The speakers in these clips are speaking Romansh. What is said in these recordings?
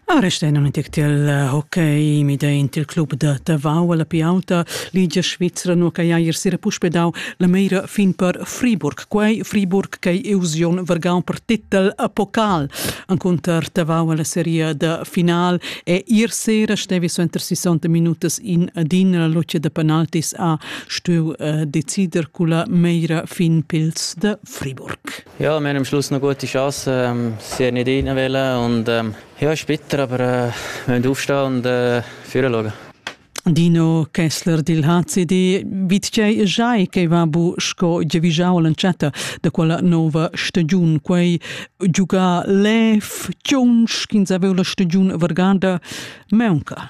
Ah, resta in antic til eh, hockey mi de in til club da Tavau alla Piauta Ligia Svizzera no che ier sera puspedau la meira fin per Friburg quei Friburg che eusion vergau per titel a pokal anconter Tavau alla serie da final e ier sera stevi soenter 60 minutas in adin la luce da penaltis a stueu uh, decider culla meira fin pils da Friburg Ja, wir haben am Schluss noch gute Chancen. Ähm, sie haben nicht rein und ähm, ja, ist bitter, aber äh, wir müssen aufstehen und äh, führen schauen. Dino Kessler dil HCD vitgei jai che va bu sco giavigiau l'entschatta da quella nova stagiun quei giuga lef chunsch ch'ins aveva la stagiun varganda meunca.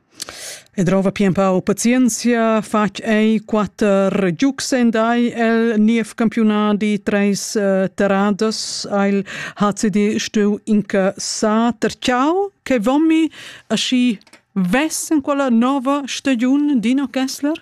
E drova pia empau pazienzia, fatg ei quater giugs en dai el niev campiunadi, treis uh, terradas ha il HCD stuiu incassar. Terciau che vomi aschi ves en quella nova stagiun Dino Kessler?